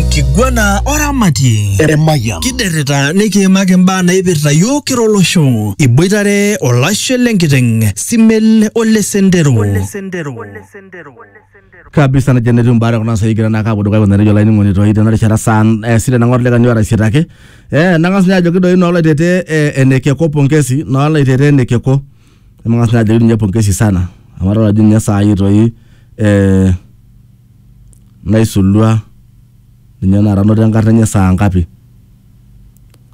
enkiguana oramatie Emayian. kiderrita nikiimaki imbaa naipirta yiok kira olosho iboitare olashe lenkiteng simel ole sendero kabisa nejo netiu mbaa kuna sai kira naa kaapuo dukuya kuna nejo olainining'oni toi tena rishata saa eh, sita nang'or lekani orasitaki eh, nang'as ninye ajoki doi noolaitete eh, enekeko pongesi noolaitete enekeko nemang'as ninye ajoki ninye pongesi sana amu adol ajo ninye saai toi eh, naisulua ninye tenakata anoto enkarna enye saa ngapi?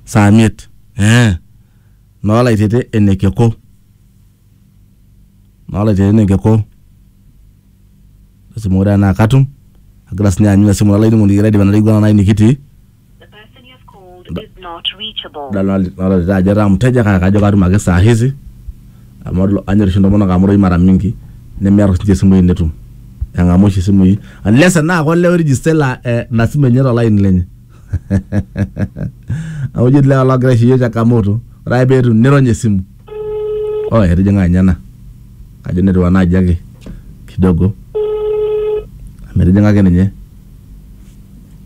Saa miet ee noo Laitete ene keko, noo Laitete ene keko lasima ore tenaa katum agira siinye aanyu ina simu olainining'oni kira aidipa ina kiguana nikitii. nadolita ajo etaa mteja kake kajo katum ake saa hizi amu anyor oshi intomonok amu irorei mara mingi nemear oshi ninche isimui netum eng'amu oshi isimui unless enaa kolee oirijista ilo eh ina simu enye tolaini lenye amu eji etii ilewa logira aisho iyiok changamoto ore ake peetum nirony esimu oh etijing'a ninye ena kajo netiu ena aji ake kidogo amu etijing'a ake ninye.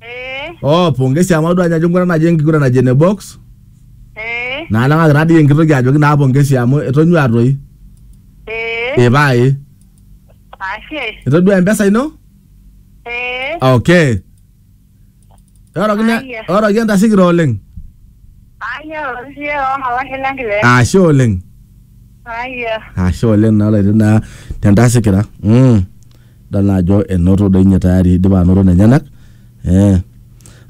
Eh, Oh, pongesi amu adua ajo enkiguran naji enkiguran naji ene box. eh, Naa nang'aki taa dii enkitoki ajoki naa pongesi amu etonyua toi. eh, Eh pae. ashe, Etodua empesa ino? eh, Okay. Oroki ne Aya. oroki entasikira oleng. aya osie omalashe lenkile, Ashe oleng. aya. Ashe oleng naa laiti naa tentasikira. Mm. Dol naa ajo enoto doi ninye tayari idipa anoto nenyenak. Eh.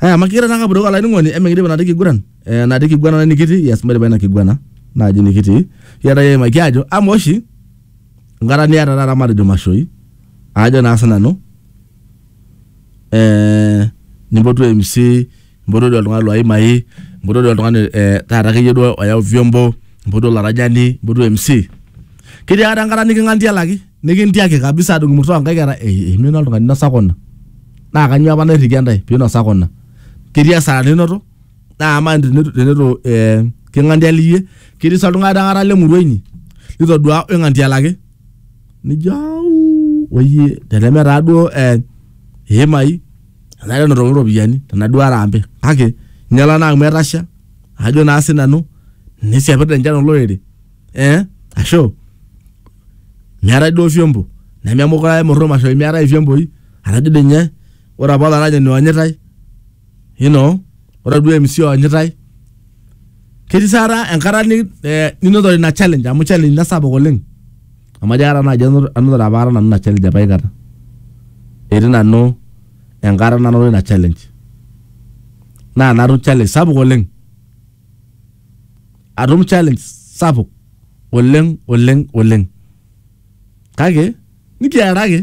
Aya, makigira naa kapuroo olainining'oni emikidip ina kiguran. Eh, ina kiguana nikitii, yes maidipa ina kiguana naaji nikitii. Kigira naaji aimaki aajo amaa oshi enkata niata taata matejo mashoi aajo naa sinanu eh nimpotu MC, nimpotu doi oltung'ani loi imai, nimpotu doi oltung'ani eh taata akeyie duo oyau vyombo, nimpotu olaranyani, nimpotu MC. Ketii akata enkata niking'antialaki? nikintiaki kabisa adung imurto onkaik era eimina oltung'ani inosa kuna naa kanyoo apa nairrikia ntae pinosa kuna ketii asara ninoto naa amaa tenitu tenitu eh, king'antialiyie ketii sa oltung'ani aikata lemurua inyi litodua oing'antialaki nijo au oyie teneme taa duo eh, iimai enare enotokini iropiyiani tenaduo arambe kake inyiala naa amu etasha ajo naa sinanu nisiapita enchan olorere eh asho meetae duo vyombo nememukura emurrum asho meetae ivyemboi araki dii ninye ore apa olaranyani oonyitae you know ore duo MC oonyitae ketii sa taata enkata ni- eh, ninotore ina challenge amu challenge ina sapuk oleng amu ajo aikata naaji anoto- anotore apa aikata nanu ina challenge apa aikata etii nanu enkata nanoto ina challenge naa natum challenge sapuk oleng atum challenge sapuk oleng oleng oleng kake nikiaraki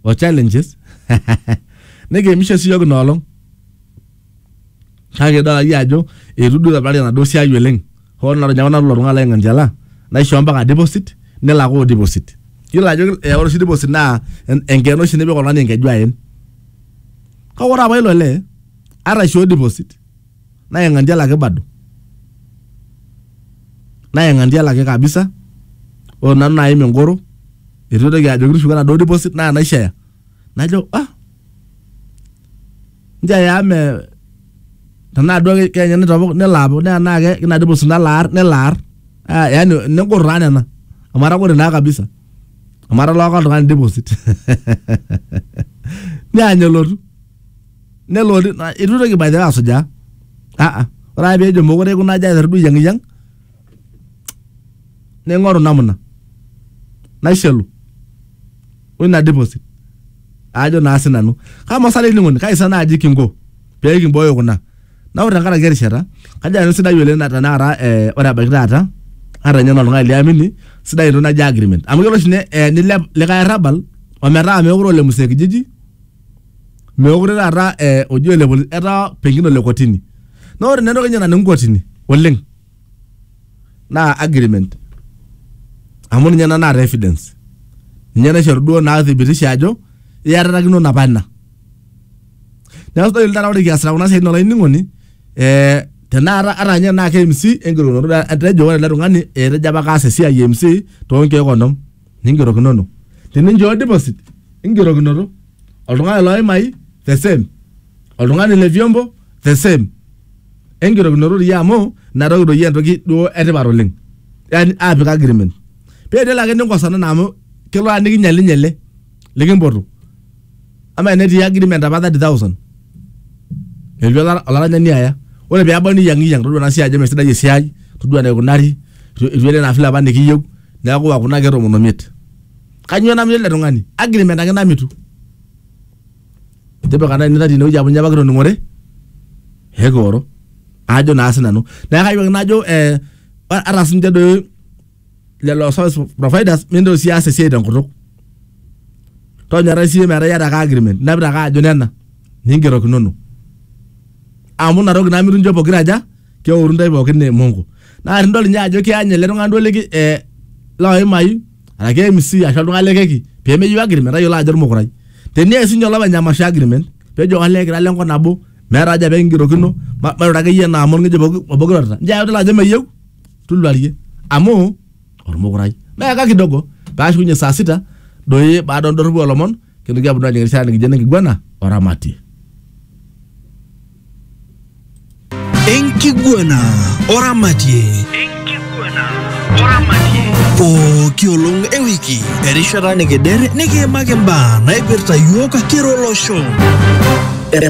o challenges nikiimisho sii yiok inoolong kake idol akeyie ajo eitu duo itobirari enaduo siai oleng hoo naa ore nanu ilo tung'ani lai Ng'anchiala naishoo mpaka deposit nilakoo deposit yiolo ajo eh, ore oshi deposit naa en- enkeene oshi nipik oltung'ani enkeju aen kake ore apa ilo lee ata aishoo deposit nayeng'antie lake bado nayeng'antie lake kabisa ore nanu naim engoro etu aitoki ajoki tushuko enaduo deposit naa naishaya najo ah nchaya amu me tenaa duo ke- kenya nitopok nelo apok naa naa ke- ina deposit nalo aar nelo aar Ah, yaani negor taa nena amu atagore naa kabisa amu atalaaka oltung'ani deposit neany elotu nelo na- itu itoki by the way asujaa aa ore ake peejo mokure aikuna aja aiteru duo ayiang'iyiang naing'oru namna naishelu oina deposit aajo naa sinanu kama sa olainining'oni kai sa naaji kinko pee kimbooyo kuna na ore tenkaraki erishata kajo nanu sidai oleng na tenakata eh, ore ebaiki taata ata ninye noltung'ani liamini sidai entoki naji agreement amu kelo oshi ne- eh, nilep likae arrabal ometaa meekure ole msee kijiji meekure taata eh, oji ole polisi etaa pengine ole kotini naa ore naa entoki enye naning'u kotini oleng naa agreement amu ninye ena naata evidence ninye naishoru duo naa thibitisha ajo iatatakino napa ina neeku sidai oleng taata ore kiasita kuna siaitin olainining'oni eh, tenakata ata ninye tenaa ke MC enkirukoto etejo ore ele tung'ani etejo apa kaas esiai e MC tonkeek onom. ningerokinono teninchoo deposit ingerokinoto oltung'ani loimai the same oltung'ani le vyombo the same engerokinoto doi amu inatoki doi entoki duo etipat oleng yani apik agreement pee tenelo ake ninkosana naa amu kelo aa nikinyalinye ele likimpotu ama enetii agreement apa 30000 etu ola- olaranyani aya ore peebau niyiang'iyiang todua ena siai ajo mesidai esiai todua enaikunari itu itu ene ina file apa nikiyieu neeku iwa kuna keek tomon omiet kanyoo namitu ele tung'ani agreement ake namitu tipika nai nita tinewueji amu inye apa kitoning'ore ekioro ajo naa sinanu neeku kayieu ake najo eh, ata sinche doi lelo service providers mintoki sii aas esiai tenkutuk tonyorrai siyie metaa iyata ake agreement inapita ake ajo nena ningerokinono amu inatoki naa mituncho pokira aja keoru intae pookin ne mongo naa tinidol ninye ajo kiyany ele tung'ani duo liki eh, loimai araki MC ashu oltung'ani le keki pemeyieu agreement tayiolo ajo ormukurai tenias sinye olopeny emasho agreement pejo olee kira lenkop nabo meeta haja pekingerokino ma- mairura akeyie naa amu orng'ejep obo obo kirorita nchoo ake idol ajo meyieu tuluarie amu ormukurai meeka kidogo paashukunye saa sita doi baada ondorropu olomon kintoki aponu ajing erishata nikijo enenkiguana oramatie enkiguana oramatie pooki olong ewiki erishata nikider nikiimaki mbaa naipirta yiok kira olosho